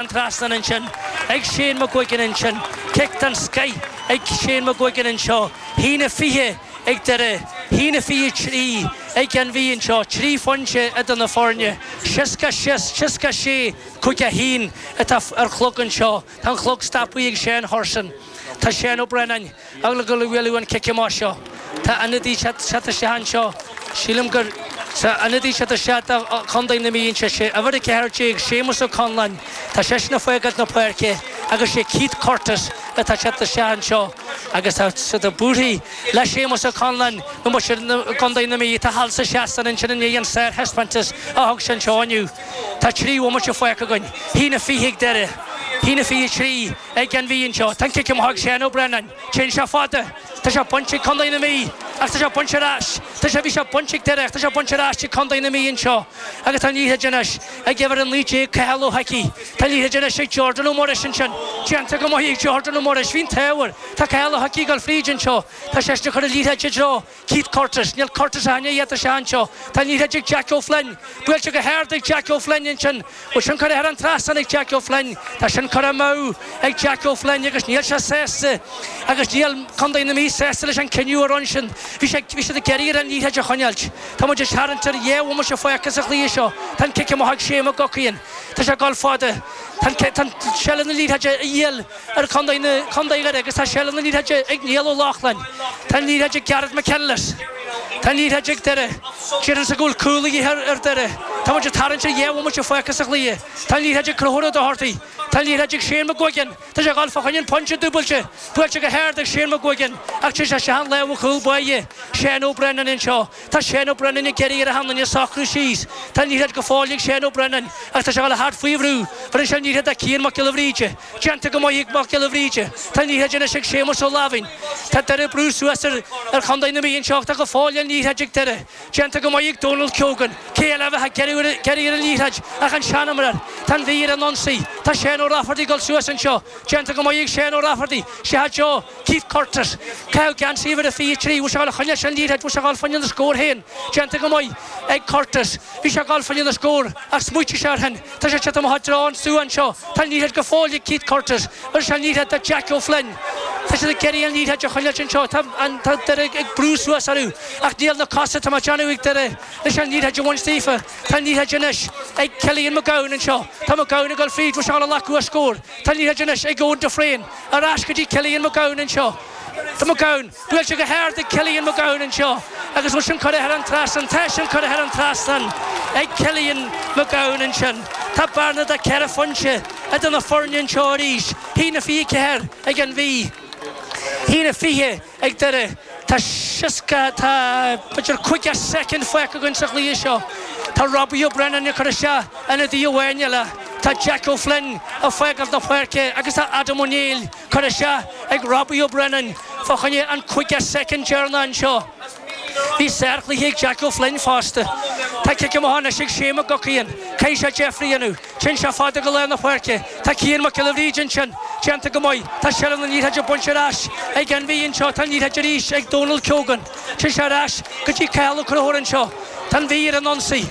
an trasnán ansin ag Shane McGuigan ansin, cic den scoith ag Shane McGuigan anseo, haon a 20 ag Doire, haon a 23 ag an Mhí anseo, trí phointe idir na foirne, 60, 66, 5 1 atá ar an chlog anseo, tá an chlog stoptha ag Seán Hurson, tá Seán Ó Braonáin. ag dul a, ag dul a bhualadh an cic amach seo, tá ionadaí ag teacht isteach anseo, sílim gur sa ionadaí ag teacht isteach do Chontae na Mí, anseo sé uimhir a 14, Séamus Ó Conláin, tá seisean ag fágáilt na páirce agus sé Keith Curtis atá ag teacht isteach anseo agus tá siad ag búirthigh le Séamus Ó Conláin nó más siad na Contae na Mí atá thall sa seastán ansin i ndiaidh an sárthaispeántas a thug sé anseo inniu. Tá trí bhomaite fágtha againn, haon a fiche ag Doire, haon a fiche trí, ag an Mhí anseo. Tá an cic amach ag Seán Ó Braonáin. Téann sé fada. Tá sé bainte ag Contae na Mí agus tá sé bainte ar ais. Tá sé, bhí sé bainte ag Doire ach tá sé bainte ar ais ag Contae na Mí anseo. Agus tá an liathróid anois ag uimhir a 19, Cathal Ó hIcí. Tá an liathróid anois ag Jordan Ó Muiris ansin. Déanta go maith ag Jordan Ó Muiris. Bhí an t-ádh air. Tá Cathal Ó hIcí ag dul fríd anseo. Tá seisean ag cur an liathróid i dtreo Keith Curtis, Níl Curtis aithne iad is ea anseo. Tá an liathróid ag Jack Ó Floinn. Buailte go hard ag Jack Ó Floinn ansin. Bhfuil sin curtha thar an trasnán ag Jack Ó Floinn. Tá sin curtha amú ag Jack Ó Floinn agus níl sé sásta agus níl Contae na Mí sásta leis an cinneadh a rinne sin. Bhí sé, bhí siad ag iarraidh air an liathróid a choinneáilt. Tá muid ag tarraingt ar dhá bhomaite fágtha sa chluiche seo. Tá an cic amach ag Shea McGuckin. Tá sé ag dul fada. Tá an, tá an seilbh na liathróide a dhíol. ar Chontae na Contae Dhoire agus tá seilbh na liathróide ag Niall Ó Lochlainn. Tá an liathróid ag Gareth McKinless. Tá an liathróid ag Doire. Tá a fhios acu go bhfuil cúl de dhíth ar Doire. Tá muid ag tarraingt ar dhá bhomaite fágtha sa chluiche. Tá an liathróid ag Conchúr Ó Dochartaigh. Tá an liathróid ag Shane McGuigan. Tá sé ag dul fá choinne an pointe dúbailte. Buailte go hard ag Shane McGuigan ach téann sé isteach i lámha cúl báire Seán Ó Brennan anseo. Tá Seán Ó Braonáin ag iarraidh ar achan nduine socrú síos. Tá an liathróid go fóill ag Seán Ó Braonáin ach tá sé ag dul thart faoi bhrú. Bheireann sé an liathróid do Cian Mac Giolla Bhríde. Déanta go maith ag Mac Giolla Bhríde. Tá an liathróid anois ag Séamus Ó Laimhín. Tá Doire ag brú suas ar Chondae na Mí anseo ach tá go fóill an liathróid ag Doire. Déanta go maith ag Donal Keogan. Cé eile a bheadh ag iarraidh ar an liathróid ach an seanimreoir. Tá an Mhí ar an ionsaí. Tá Seán Ó Rafferty ag dul suas anseo. Déanta go maith ag Seán Ó Rafferty. Scaoilte i dtreo. Keith Curtis, ag caitheamh geansaí uimhir a 23, Bhí sé ag coinneáil an liathróid, bhí sé ag dul fá choinne an scór féin déanta go maith ag Curtis. Bhí sé ag dul fá choinne an scór ach smaoitigh sé air sin. Tá sé siad amach i dtreo an suíomh anseo. Tá an liathróid go fóill ag Keith Curtis. Bheireann sé an liathróid do Jack Ó Floinn. Tá siad ag iarraidh an liathróid a choinneáil anseo. Tá an, tá Doire ag brú suas orthu ach níl na cosa atá a dhíobháil ag Doire leis an liathróid a bhaint daofa. Tá an liathróid anois ag Cillian Mac Gabhann anseo. Tá Mac Gabhann ag dul fríd, bhí sé ag dul amach uaidh scór. Tá an liathróid anois ag Eoin de Fréin. Ar ais go dtí Cillian Mac Gabhann anseo. Tá Mac Gabhann, bhuail sé go hard é, Cillian Mac Gabhann anseo agus bhfuil sin curtha thar an trasnán, tá sin curtha thar an trasnán ag Cillian Mac Gabhann ansin. Tá bearna de ceithre phointe idir na foirne anseo arís, a haon fiche ceathair ag an Mhí, a haon fiche ag Doire. Tá seasca, tá b'fhéidir caoga soicind fágtha againn sa chluiche seo. Tá Robbie O'Brennan ag cur isteach ionadaí amháin eile, tá Jack O'Flynn ag fágáilt na páirce agus tá Adam O'Neill curtha isteach ag Robbie O'Brennan fá choinne an caoga soicind deireanach anseo. Bhí sárchluiche ag Jack O'Flynn fosta. Tá cic amach anois ag Shea McGuckin. Caithfidh sé deifre a dhéanamh. Téann sé fada go lár na páirce. Tá Cian Mac Giolla Bhríde ansin. Déanta go maith. Tá seilbh na liathróide bainte ar ais ag An Mhí anseo. Tá an liathróid arís ag Donal Keogan. Téann sé ar ais go dtí Cathal Ó Conchúir anseo. Tá An Mhí ar an ionsaí.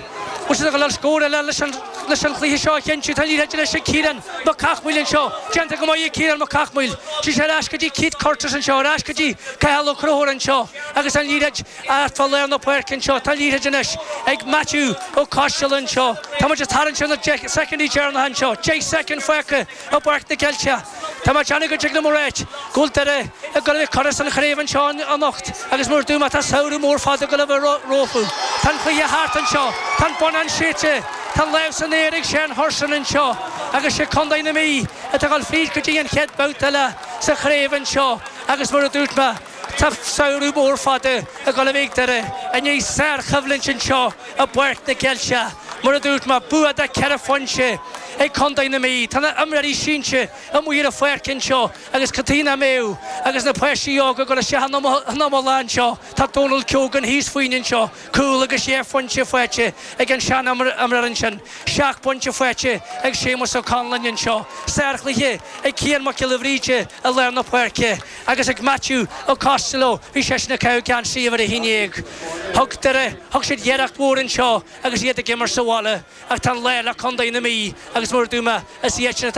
Bhfuil siad ag dul a fháil scór eile leis an chluiche seo a chinntiú. Tá an liathróid anois ag Ciarán Mac Cathmhaoil anseo. Déanta go maith ag Ciarán Mac Cathmhaoil. Téann sé ar ais go dtí Keith Curtis anseo. Ar ais go dtí Cathal Ó Conchúir anseo agus an liathróid. Thart fá lár na páirce anseo, tá an liathróid anois ag Matthew Ó Coistealla anseo. Tá muid ag tarraingt ar na deich soicindí deireanacha anseo, deich soicind fágtha i bPáirc na gCeilteach. Tá mé ag déanamh go dtig liom a ráit go bhfuil Doire ag dul a bheith curtha as an chraobh anseo anocht agus mar a dúirt mé tá samhradh mór fada ag dul a bheith rompu. Tá an cluiche thart anseo, tá an bonnán séidte, tá an lámh san aer ag Seán Hurson anseo agus sé contae na Mí atá ag dul fríd go dtí an chéad babhta eile sa chraobh anseo agus mar a dúirt mé, Tá samhradh mór fada ag dul a bheith ag Doire i ndiaidh sárchoimhlint anseo i bPáirc na gCeilteach. Mar a dúirt mé, bua de ceithre phointe ag contae na Mí. Tá na himreoirí sínte amuigh ar an pháirc anseo agus contae na Mí agus na páistí óga ag dul isteach ina mullach anseo. Tá Dónal Keogan thíos fúinn anseo, cúl agus dhá phointe faighte ag an seanimreoir ansin, seacht bpointe faighte ag Séamus Ó Conalláin anseo. Sárchluiche ag Cian Mac Giolla Bhríde i lár na páirce. Agus ag Matthew Ó Costello, bhí seisean ag caitheamh geansaí uimhir a haon déag. Thug Doire, thug siad iarracht mhór anseo agus iad ag imirt sa bhaile ach tá an lá le contae na Mí agus mar a dúirt mé, is iadsan atá